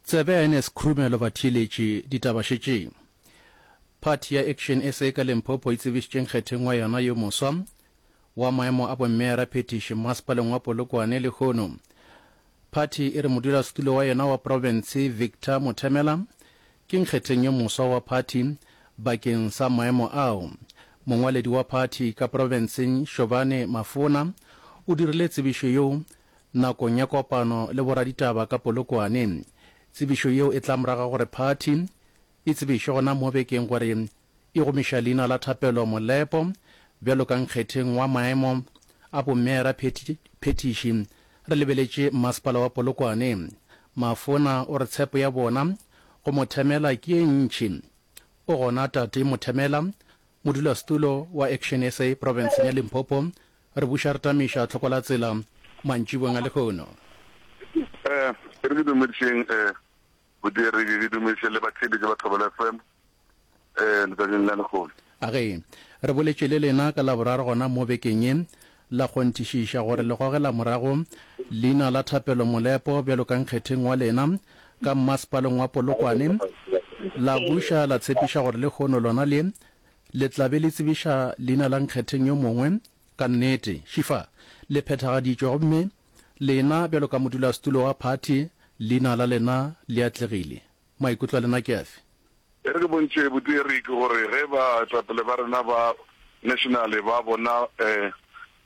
Tsebe ya Ernest Khrumelo Batheeletši ditaba šetšeng Phathi ya Action sa ka Limpopo e tsebišitše nkgetheng wa yona yo moswa wa maemo a bommeera phethiši mmasepaleng wa Polokwane lehono phathi e re modulasetulo wa yona wa profense Victor Mothemela ke nkgetheng yo moswa wa phathi bakeng sa maemo ao. Mongwaledi wa phathi ka profenseng Shobane Mafona o dirile tsebišo yo Nakong ya kopano le boraditaba ka Polokwane, tsebišo yeo e tla morago ga gore phathi e tsebiše gona mo bekeng gore e gomiša leina la Thapelo Molepo bjalo ka nkgetheng wa maemo a bommeera phethiši. Re lebeletše mmasepala wa Polokwane. Mafona o re tshepo ya bona go Mothemela ke ye ntši. O gona tate Mothemela Modulasetulo wa Action sa profenseng ya Limpopo, re buša re tamiša tlhoko la tsela mantšibong a lehono. E re ke dumedišeng bodiredi, ke dumediše le batheeletši ba Thobela FM letšatšing la lehono. A ge re boletše le lena ka Laboraro gona mo bekeng ye, la kgonthišiša gore le gogela morago leina la Thapelo Molepo bjalo ka nkgetheng wa lena ka mmasepaleng wa Polokwane, la buša la tshepiša gore lehono lona le le tla be le tsebiša leina la nkgetheng yo mongwe. Ka nnete, šifa le phethagaditšwe gomme lena bjalo ka modulasetulo wa phathi leina la lena le atlegile. Maikutlo a lena ke afe? E re ke bontše botee Rick gore ge baetapele ba rena ba nationale ba bona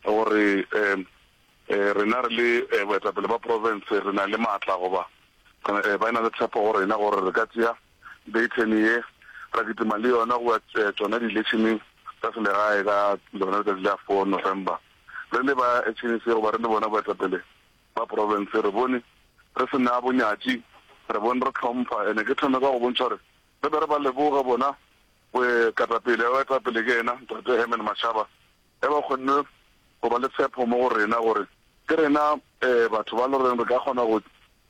gore rena re le boetapele ba province re na le maatla goba ba e na le tshepo go rena gore re ka tšea Dayton ye ra kitima le yona go ya tšona di-electioneng tsa selegae ka lona letšatši la four November re le ba HNC goba re le bona boetapele Ba profense re bone re se na bonyatši, re bone re hlompha. Ene ke thome ka go bontšha gore re be re ba leboge bona boekatapele ba etapele ke ena Ntate Herman Mashaba ge ba kgonne go ba le tshepho mo go rena gore ke rena batho ba lo reng re ka kgona go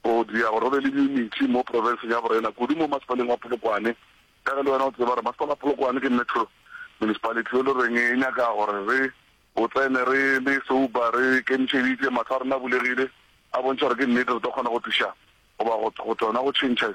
go dia gore go be le diyuniti mo profenseng ya borena kudu mo masepaleng wa Polokwane ka ge le wena o tseba gore masepala wa Polokwane ke metro municipality e lo reng e nyaka gore re O tsene re le souba, re kemišeditše, mahlo a rena a bulegile, a bontšha gore ke nnete re tlo kgona go tliša goba go go tona go tšhentšha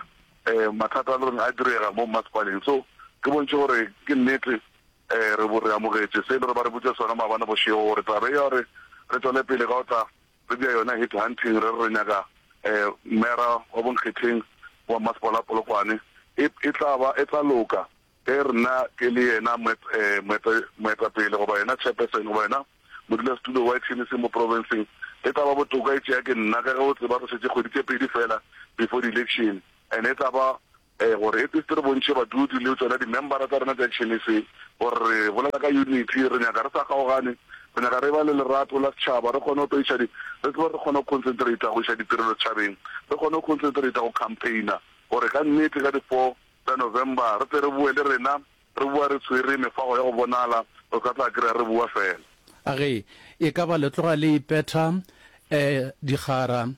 um mathata a le goreng a direga mo mmasepaleng. So ke bontšhe gore ke nnete um re bo re amogetše se e le gore ba re botša sona maabane bošego gore taba e ya gore re tšwele pele ka go tla re bja yona head hunting re re re nyaka um mera wa bonkgetheng wa mmasepala wa Polokwane e e tla ba e tla loka. Ge re na ke le yena moet, eh, moeta, moetapele goba yena chairperson goba yena modulasetulo wa etšhene se mo provinseng, e tla ba botoka e tšea ke nna ka ge o tseba re šetše kgwedi tše pedi feela before di-election and e tla ba, eh, gore at least re bontšhe badudi le tšona di-membera tsa rena tša etšhene se gore re bolela ka unity, re nyaka re sa kgaogane, re nyaka re ba le lerato la setšhaba, re kgone go tlo iša di, re tsebe gore re kgone go concentrata go iša ditirelo setšhabeng, re kgone go concentrata go campaigner gore ka nnete ka di four Tsa November re tle re boe le rena re boa re tshwere mefago ya go bonala, o sa tla kry-a re boa fela. A re, E ka ba le tloga le ipetha eh digara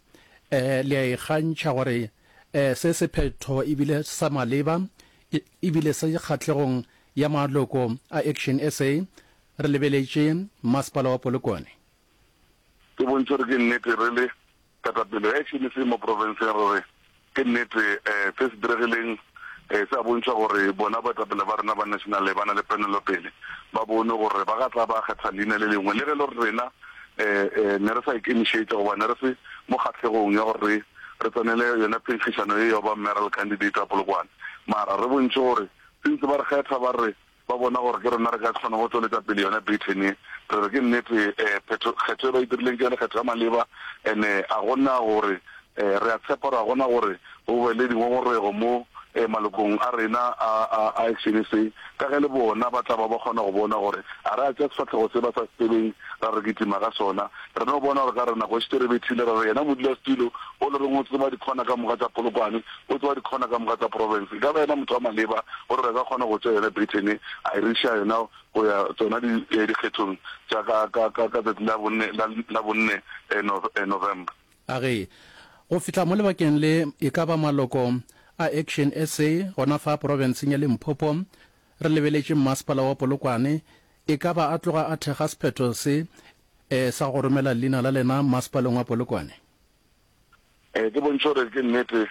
eh le a ikgantšha gore eh se sephetho e bile sa maleba e e bile se kgahlegong ya maloko a Action SA, re lebeletše Masepala wa Polokwane. Ke bontšhe gore ke nnete re le Ketapele ya HMC mo profenseng re re ke nnete se se diregileng se a bontšha gore bona boetapele ba rena ba National ba na le penelopele. Ba bone gore ba ka tla ba kgetha leina le lengwe le ge e le gore rena ne re sa ikemišetša goba ne re se mo kgahlegong ya gore re re tsenele yona phenkgišano ye ya go ba Mayoral Candidate wa Polokwane. Mara re bontšhe gore since ba re kgetha ba re Ba bona gore ke rena re ka kgona go tšweletša pele yona Britain ye. Re re ke nnete phetho, kgetho ye ba e dirileng ke yona kgetho ya maleba, and-e a go na gore re a tshepa gore a go na gore go be le dingongorego mo malokong a rena a, a, a Action SA, ka ge le bona ba tla ba ba kgona go bona gore a re a tša sefahlego se ba sa se tsebeng ra re kitima ka sona. Re no bona gore ka re nako e šetše re bethile, ra re yena modulasetulo o le reng o tseba dikhona ka moka tša Polokwane, O tseba dikhona ka moka tsa province. E ka ba yena motho wa maleba gore re ka kgona go tšea yona Britain a e re iša yona go ya tsona dikgethong tša ka, ka, ka, ka tšatši la bonne, la, la bonne Nov, November. A re, Go fihla mo lebakeng le, e ka ba maloko a Action SA gona fa provinseng ya Limpopo, re lebeletše mmasepala wa Polokwane, e ka ba a tloga a thekga sephetho se, eh, sa go romela leina la lena mmasepaleng wa Polokwane. eh, ke bontšhe gore ke nnete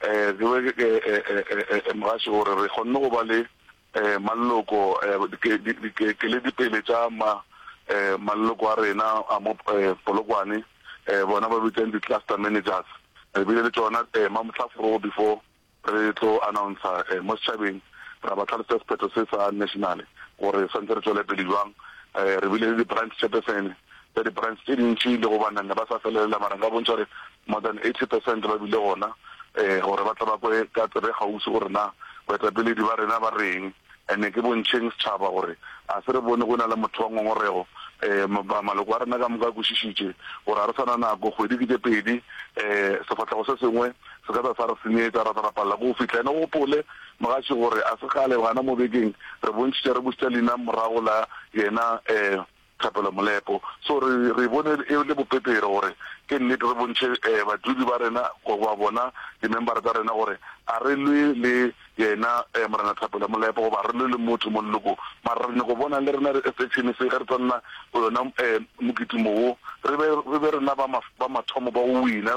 eh, ke be ke eh, mogaši gore re kgonne go ba le eh, malloko eh, dipele tša ma eh, malloko a rena a mo eh, polokwane eh, bona ba bitsang di-cluster managers re bile le tsona eh, mamohlaforogo before Re tlo announcer mo setšhabeng, ra ba tlhalosetsa sephetho se sa national gore swantse re tšwele pele bjang. Re bile le di-branch chairperson tša di-branch tše dintši le go banna ba sa felelela mara nka bontšha gore more than eighty percent ba bile gona gore ba tle ba kwe ka tsebe e kgaufsi gore na boetapeledi ba rena ba reng. and-e ke bontšheng setšhaba gore a se re bone go e na le motho wa ngongorego. Um maloko a rena ka moka a kwešišitše gore ga re sa na nako, kgwedi ke tše pedi, um sefahlego se sengwe se ka tla sa re senyetša, ra tla ra palela ke go fihla. And-e o gopole mogatši gore a se kgale gana mo bekeng re bontšhitše re bušetša Lina morago la yena um Thapelo Molepo. So re re e bone e le bopepere gore ke nnete re bontšhe badudi ba rena goba bona dimembara tsa rena gore a re lwe le yena Morena Thapelo Molepo goba a re lwe le motho mo lelokong mara re nyako bona le rena section se ge re tla nna go yona mokitimo wo re be re be rena ba mathomo ba go wina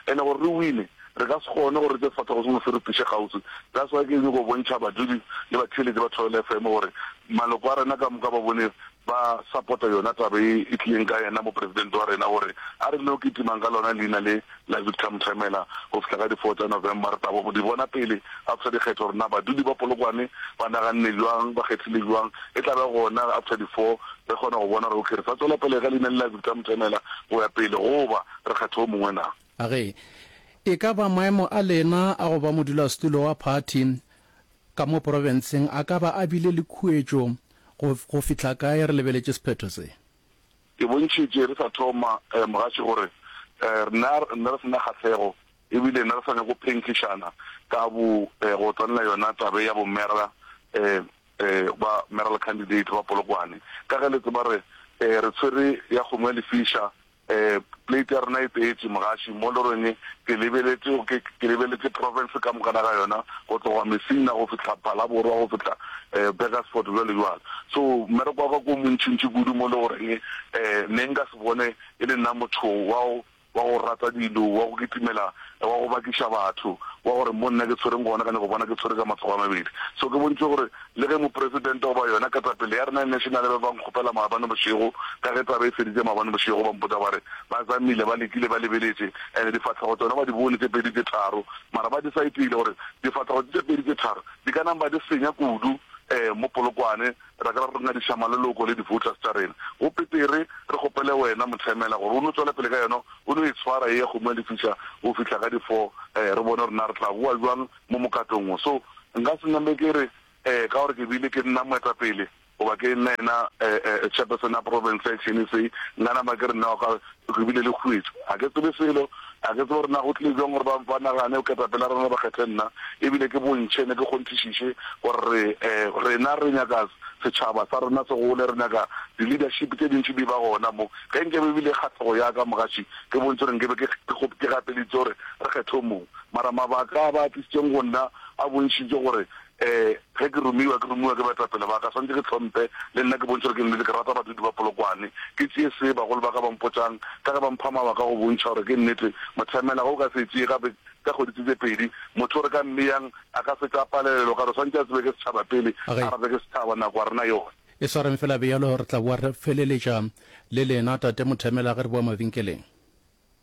e le gore re wine Re ka se kgone gore re tše sefahlego sengwe se re tliše kgauswi. That's why ke nyoko bontšha badudi le batheeletši ba Thobela FM gore maloko a rena ka moka ba bone ba support-a yona taba ye e tlileng ka yena Mopresidente wa rena gore a re no kitimang ka lona leina le la Victor Mthemela go fihla ka di four tša November. Re tabo di bona pele after dikgetho gore na badudi ba Polokwane ba naganne bjang, ba kgethile bjang. E tla be gona after di four re kgona go bona gore okay re sa tšwela pele ka leina le la Victor Mthemela go ya pele goba re kgetha o mongwe na. A re, E ka ba maemo a lena a go ba modulasetulo wa phathi ka mo porofenseng a ka ba a bile le khuetšo go go fihla kae re lebeletše sephetho se? Ke bontšhitše re sa thoma, mogatše, gore re ne re ne re se na kgahlego e bile ne re sa nyako phenkgišana ka bo go tsenela yona taba ya bomera ba mayoral candidate ba Polokwane ka ge le tseba re re tshwere ya kgomo ya lefiša Plate ya rena e tletše, mogaši, mo loreng ke lebeletše, ke, ke lebeletše province ka mokana ga yona, go tloga Messina go fihla Phalaborwa, go fihla Burgersfort, bjalo bjalo. So, mmereko wa ka ke o montšintši kudu mo le goreng ne nka se bone e le nna motho wa go, wa go rata dilo, wa go kitimela, wa go bakiša batho, wa gore mo nna ke tshwereng gona ka nyako bona ke tshwere ka matsogo a mabedi. So ke bontšitše gore Le ge Mopresidente goba yona ketapele ya rena e nešenale ba be ba nkgopela maabane bošego, ka ge taba e feditše maabane bošego, ba mpotša ba re, Ba zamile, ba lekile, ba lebeletše, and difahlego tšona ba di bone tše pedi tše tharo, mara ba decide-ile gore difahlego tše tše pedi tše tharo di ka namba di senya kudu um mo Polokwane, ra ka ra re ngadiša maleloko le di-voters tša rena. Go petere re kgopele wena Mothemela gore o no tšwele pele ka yona, o no e tshwara e ya kgomo ya lefiša go fihla ka di-four, um re bone gore na re tla boa bjang. mo mokgatong wo. So nka se nyame ke re ka gore ke bile ke nna moetapele goba ke nna yena chairperson ya province ya chnec, nka nama ke re nna wa ka ke bile le khuetšo. Ga ke tsebe selo, ga ke tsebe gore na go tlile bjang gore ba ba nagane ketapele ya rena ba kgethe nna ebile ke bontšhe ne ke kgonthišiše gore rena re nyaka setšhaba sa rena se gole, re nyaka di leadership tše dintši di ba gona mo. Ge nke be e bile kgahlego ya ka mogatši ke bontši gore nke be ke ke gapelitše gore re kgethe o mongwe. Mara mabaka a ba a tlišitšeng go nna a bontšhitše gore ge ke romiwa, ke romiwa ke baetapele ba ka, swanetše ke hlomphe le nna, ke bontšhe gore ke nnete. Ke rata badudi ba Polokwane, ke tšee se bagolo ba ka ba mpotšang, ka ge ba mpha mabaka a go bontšha gore ke nnete. Mothemela, ge o ka se e tšee gape ka kgwedi tše tše pedi, motho o re ka mmeyang a ka fetša a palelelwa, o ka re o swanetše a tsebe ke setšhaba pele, a rate ke setšhaba, nako a rena yona. E swareng fela bjalo, re tla boa re feleletša le lena, Tate Mothemela, ge re boa mabenkeleng.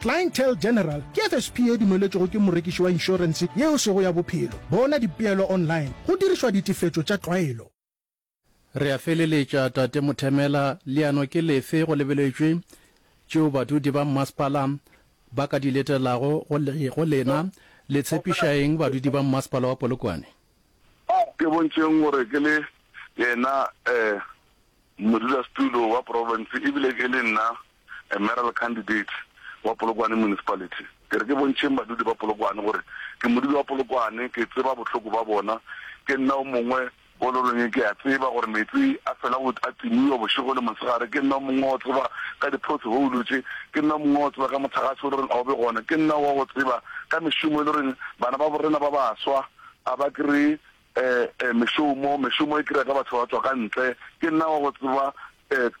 Clientele General ke FSP e dumeletšwego ke morekiši wa inšorense yeo sego ya bophelo. Bona dipeelo online go dirišwa ditefetšo tša tlwaelo. Re a feleletša, Tate Muthemela. Leano ke lefe go lebeletšwe tšeo badudi ba mmasepala ba ka di letelago go le, go lena? Le tshepiša eng badudi ba mmasepala wa Polokwane? Ke bontšheng gore ke le yena, eh. Modulasetulo wa profense e bile e le nna mayoral candidate wa Polokwane Municipality. Ke re ke bontšheng badudi ba Polokwane gore ke modudi wa Polokwane, ke tseba bohloko ba bona. Ke nna o mongwe o lo reng ke a tseba gore meetse a fela go a timiwa bošego le mosegare. Ke nna o mongwe wa go tseba ka di-pothole tše. Ke nna o mongwe wa go tseba ka motlagase o lo reng a o be gona. Ke nna wa go tseba ka mešomo e lo reng bana ba bo rena ba baswa a ba kry-e Ee, mešomo, mešomo e kira ka batho ba tswa ka ntle. Ke nna wa go tseba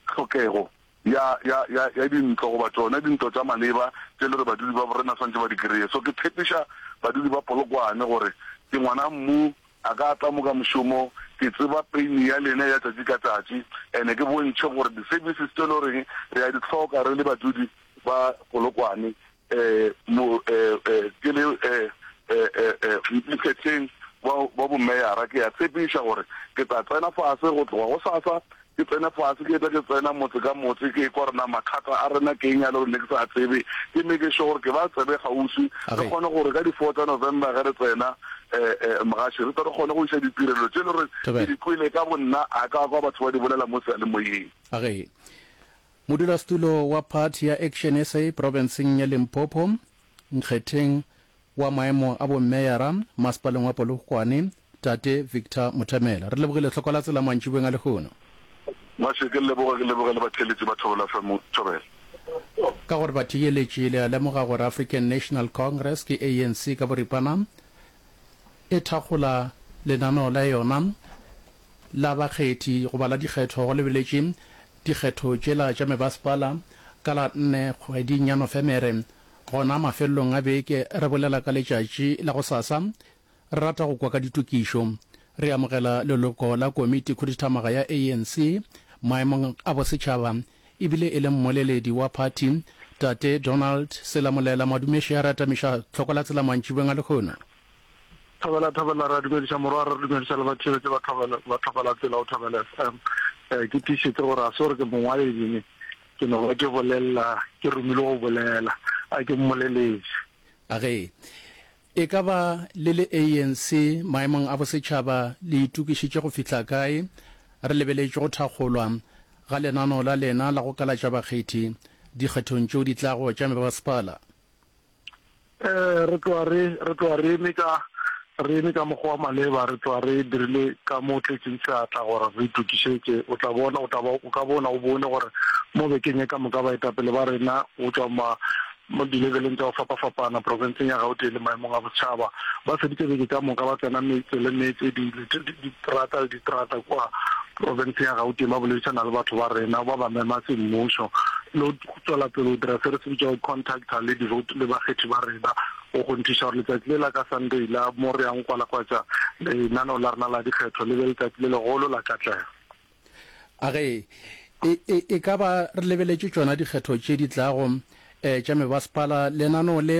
tlhokego ya, ya, ya, ya dintlo, goba tšona dintlo tša maleba tše le re badudi ba borena swantše ba di kreye. So ke tshepiša badudi ba Polokwane gore ke ngwana mmu, a ka tla mo ka mešomo, ke tseba peini ya lena ya tšatši ka tšatši, and ke bontšhe gore di-services tše le goreng re a di hloka re le badudi ba Polokwane, eh, mo, eh, eh, ke le eh, eh, eh, eh, mokgetheng wa wa bomeyara ke ya tshepiša gore ke tla tsena fase go tloga go sasa ke tsene fase ke tle ke tsena motse ka motse ke kwa rena mathata a rena ke eng ya le gore ne ke sa tsebe ke meke sure gore ke ba tsebe gausi re kgone gore ka di-four tsa november ge re tsena Eh, eh, mogaši re tore kgone go isa ditirelo tse le gore ke di kwele ka bonna a ka kwa batho ba di bolela mo sealemoyeng age Modulasetulo wa phathi ya Action sa profenseng ya Limpopo, nkgetheng wa maemo a bomeyara masepaleng wa Polokwane, Tate Victor Mutemela. Re lebogile tlhoko la tsela mantšibeng a lehono. Mase, ke leboge, ke leboge le batheeletsi ba Thobela FM. Thobela. Ka gore batheeletši le a lemoga gore African National Congress ke ANC ka boripana e thakgola lenaneo la yona, la bakgethi goba la dikgetho go lebeletše dikgetho tšela tša mebasepala ka la nne kgweding ya Nofemere. Gona mafelelong a beke re bolela ka letšatši la gosasa. Re rata go kwa ka ditokišo. Re amogela leloko la Komiti Khuduthamaga ya ANC maemong a bosetšhaba e bile e le mmoleledi wa phathi Tate Donald Selamolela Madumeši a re atamiša tlhoko la tsela mantšibeng a lehono. Thobela Thobela re a dumediša morwa re dumediša le ba tšebetše ba Thobela ba Thobela tsela o Thobela FM eh ke tišitse gore a se gore ke mongwaledi ne ke no ba ke bolelela ke romile go bolela a ke mmoleletše A ge e ka ba le le ANC maemong a bosetšhaba le itokišitše go fihla kae? Re lebeletše go thakgolwa ga lenano la lena la go kalatša bakgethi dikgethong tšeo di tlago tša mebasepala. Eh, re tloa re, re tloa re eme ka, re eme ka mokgwa wa maleba, re tloa re dirile ka mo tletšeng seatla gore re itokišetše. O tla bona, o tla ba, o ka bona, o bone gore mo bekeng ye ka moka baetapele ba rena go tšwa ma, mo dilebeleng tša go fapafapana profenseng ya Gauteng le maemong a bosetšhaba ba feditše beke ka moka ba tsena metse le metse, di, di, diterata le diterata kua profenseng ya Gauteng ba boledišana le batho ba rena, ba ba mema semmušo le tšwela pele go dira se re se bitšago contacta le devote le bakgethi ba rena go kgonthiša gore letsatsi le la ka sunday la mo re yang kwalakwatša lenaneo la rena la dikgetho le be letsatsi le legolo la katlego a ge e, e, e ka ba re lebeletše tšona dikgetho tše di tlago um tša mebasepala lenaneo le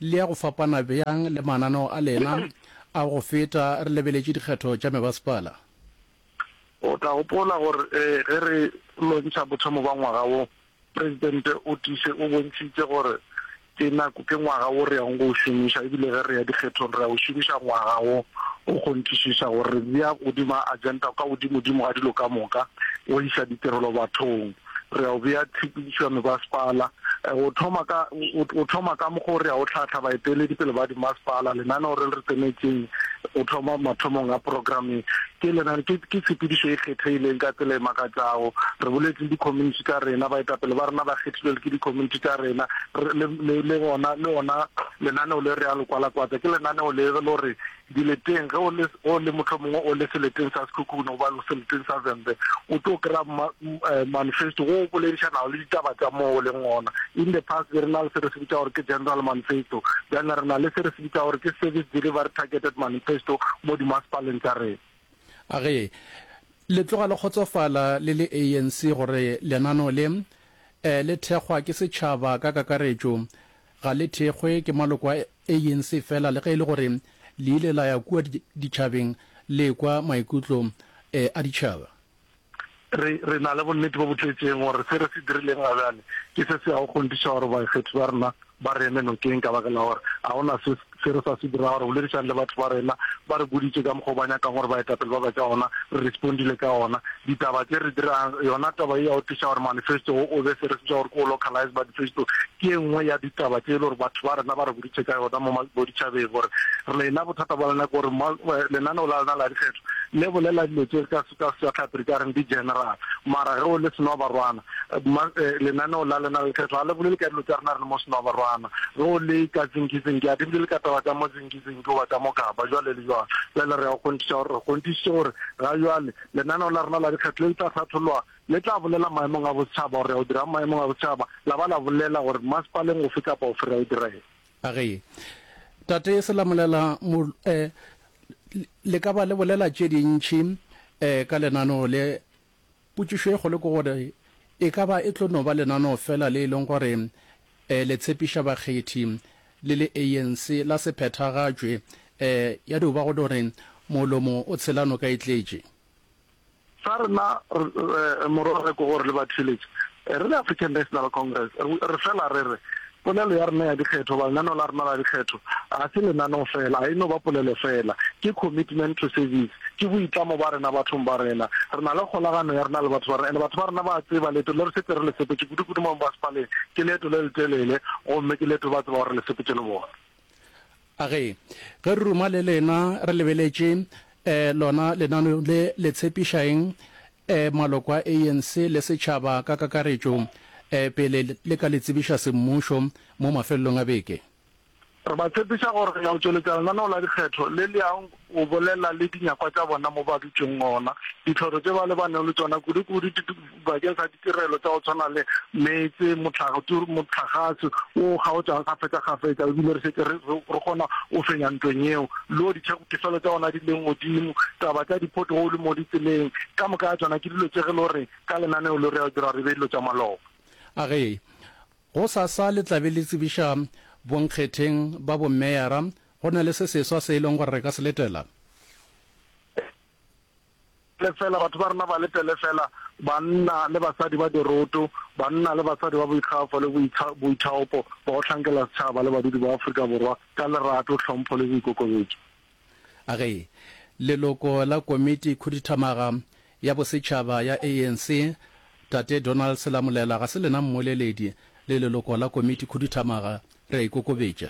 le ya go fapana bjang le mananeo a lena a go feta re lebeletše dikgetho tša mebasepala O tla gopola gore ge re lontšha bothomo bwa ngwaga wo, Presidente o tiise o bontšhitše gore ke nako ke ngwaga wo re yago go o šomiša e bile ge re ya dikgethong re ya o šomiša ngwaga wo go kgonthišiša gore re bea godimo agenda ka godimodimo ga dilo ka moka go isa ditirelo bathong. re a o bea tshepedišo ya mebasepala. O thoma ka, o thoma ka mokgwa o re a o hlahla baeteledi pele ba dimasepala. Lenaneo re le re tsenetšeng o thoma mathomong a programe. Ke lenane, ke, ke tshepedišo e kgethegileng ka tsela e makatšago. Re boletse le di-community tša rena, baetapele ba rena ba kgethilwe ke di-community tša rena. Re, le, le, le gona, le gona lenaneo le re a le kwalakwatsa. Ke lenaneo le e le gore Dileteng, ge o le, o le mohlomongwe o le seleteng sa Sekhukhune goba seleteng sa Vhembe, o tlo kry-a ma, eh, manifesto wo o boledišanago le ditaba tša moo o leng gona. In the past be re na le se re se bitša gore ke general manifesto, bjana re na le se re se bitša gore ke service delivery targeted manifesto mo dimasepaleng tša rena. A re le tloga le kgotsofala le le ANC gore lenano le, eh, le thekgwa ke setšhaba ka kakaretšo, Ga le thekgwe ke maloko a ANC fela le ge e le gore le ile la ya kua ditšhabeng le ekwa maikutlo a ditšhaba. Re, re na le bonnete bo bo tletšeng gore se re se dirileng ga bjale ke se se yago kgonthiša gore baikgethi ba rena ba re eme nokeng ka baka la gore ga go na se Se re sa se dirago, re boledišane le batho ba rena, ba re boditše ka mokgwa o ba nyakang gore baetapele ba be ka ona, re respondile ka ona. Ditaba tše re dirang, yona taba ye ya go tliša gore manifesto wo o be se re se bitša gore ke o localize manifesto, ke e nngwe ya ditaba tše e le gore batho ba rena ba re boditše ka yona mo boditšhabeng gore lena bothata bja lena ke gore ma, lenaneo la lena la dikgetho le bolela dilo tše ka, ka Sejatlhapi re ka reng di general, mara ge o le Senoabarwana, Ma, eh, lenaneo la lena le kgethwa ga le bolele ka dilo tsa rena re le mo senoabarwana go le ka tsinkizinki a di bolele ka taba tsa mo tsinkizinki goba tsa mo kaba jwale le jwang jwale re ya go kgonthiša gore re kgonthišitše gore ga jwale lenaneo la rena la dikgetho le le tla hlatholwa le tla bolela maemong a bosetšhaba gore ya go dira maemong a bosetšhaba la ba la bolela gore masepaleng ofe kapa ofe re ya go direng a ge tate se la molela mo eh, le ka ba le bolela tše dintšhi eh, ka lenaneo le Potšišo e kgolo ke gore, E ka ba e tlo no ba lenaneo feela le e leng gore um le tshepiša bakgethi le le ANC la se phethagatšwe, um ya dio ba go no re molomo o tshela noka e tletše? Sa rena morwarre ke gore le batheeletši re le African National Congress re fela re re Polelo ya rena ya dikgetho goba lenaneo la rena la dikgetho ga se lenaneo feela, ga e no ba polelo feela. Ke commitment to service, ke boitlamo ba rena bathong ba rena. Re na le kgolagano ya rena le batho ba rena, and batho ba rena ba a tseba leeto le re šetše re le sepetše kudu-kudu mo Mmasepaleng ke leeto le letelele gomme ke leeto ba tsebago re le sepetše le bona. A Ge re ruma le lena re lebeletše eh, lona lenaneo le le tshepiša eng eh, maloko a ANC le setšhaba ka kakaretšo eh, pele le ka le tsebiša semmušo mo mafelelong a beke? Re ba tshepiša gore re ya go tšweletša lenaneo la dikgetho le le yang O bolela le dinyakwa tša bona mo ba dutšeng gona. Ditlhoro tše ba lebanego le tšona kudu-kudu di bakeng sa ditirelo tša go tshwana le meetse, mohlagase wo o kgaotšago kgafetša-kgafetša, e bile re šetše re kgona go fenya ntweng yeo. Lo, ditefelo tša gona di leng godimo, taba tša di-pothole mo ditseleng, ka moka ga tšona ke dilo tše ge lo re ka lenaneo lo re ya dirwa re be dilo tša maloba. A re, Gosasa le tla be le tsebiša bonkgetheng ba bomeyara Go na le se seswa se e lego gore re ka se letela? Lefela, batho ba rena ba letele fela banna le basadi ba diroto, banna le basadi ba boikgafo le boithaopo, ba go hlankela setšhaba le badudi ba Afrika Borwa ka lerato, tlhompho le boikokobetšo. A ge leloko la Komiti Khuduthamaga ya Bosetšhaba ya ANC, Tate Donald Selamulela, ga se lena mmoleledi le leloko la Komiti Khuduthamaga, re a ikokobetša.